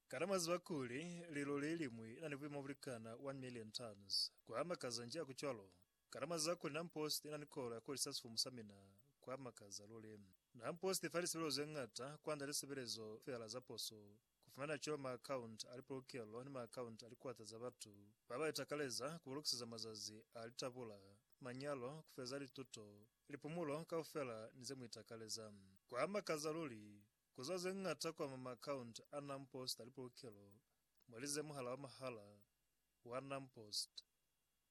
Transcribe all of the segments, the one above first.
Kana mwa ziba kuli lilori ye liñwi ina ni buima bulikana 1 million tons? Kwa makaza nji aku cwalo! Kana mwa ziba kuli Nam Post ina ni kolo ya kuholisa sifumu sa mina? Kwa makaza luli! Nam Post ifa lisebelezo ze ñata kwanda lisebelezo fela za poso, ku fumana cwalo ma account a lipolokelo ni ma account a likwata za batu ba ba itakaleza ku ba lokiseza mazazi a litabula, manyalo, ku feza lituto, Lipumulo kaufela ni ze mu itakaleza. Kwa makaza luli, ku zwa ze ñata kwa ma account a NamPost a lipolokelo, mwalize muhala wa mahala wa NamPost,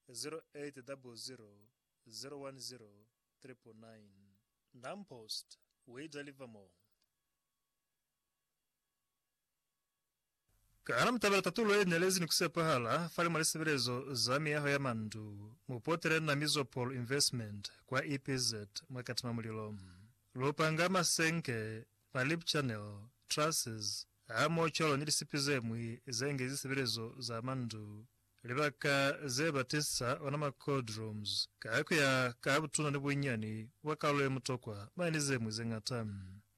0800010999. NamPost, we deliver more. Kana mu tabela tatulo ye nelezi ni ku sepahala fale mwa lisebelezo za miyaho ya mandu? Mu potele na Mizopol Investment kwa EPZ mwa Katima Mulilo. Lu panga masenke, ma lip channel, trusses, hamoho cwalo ni lisipi ze ñwi ze ngezi sebelezo za mandu, libaka ze ba tisa ona ma cold rooms, ka ku ya ka butuna ni bunyani bwa kalulo ye mutokwa mwa ni ze ñwi ze ñata.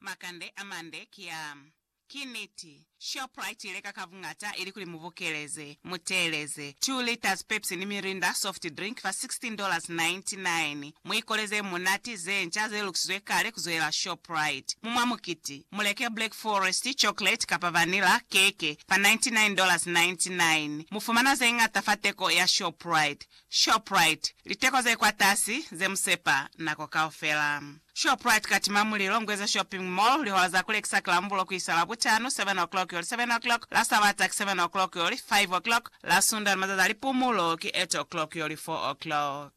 Makande a mande ki a. Ki niti, Shoprite i leka ka buñata ilikuli mu bukeleze, mu teeleze, 2 liters Pepsi ni Mirinda soft drink fa $16.99. Mu ikoleze munati ze nca ze lukisizwe kale ku zwela Shoprite. Mu mwa mukiti, mu leke Black Forest chocolate kapa vanilla keke fa $99.99. Mu fumana ze ñata fa teko ya Shoprite. Shoprite, Liteko ze kwatasi ze mu sepa nako kaufela. Shoprite Katima Mulilo, Ngweza Shopping Mall, Lihola za ku lekisa ki Lambulo ku isa Labutano, 7 o'clock yoli 7 o'clock, la Sabata ki 7 o'clock yoli 5 o'clock, la Sunda ni mazazi a lipumulo ki 8 o'clock yoli 4 o'clock.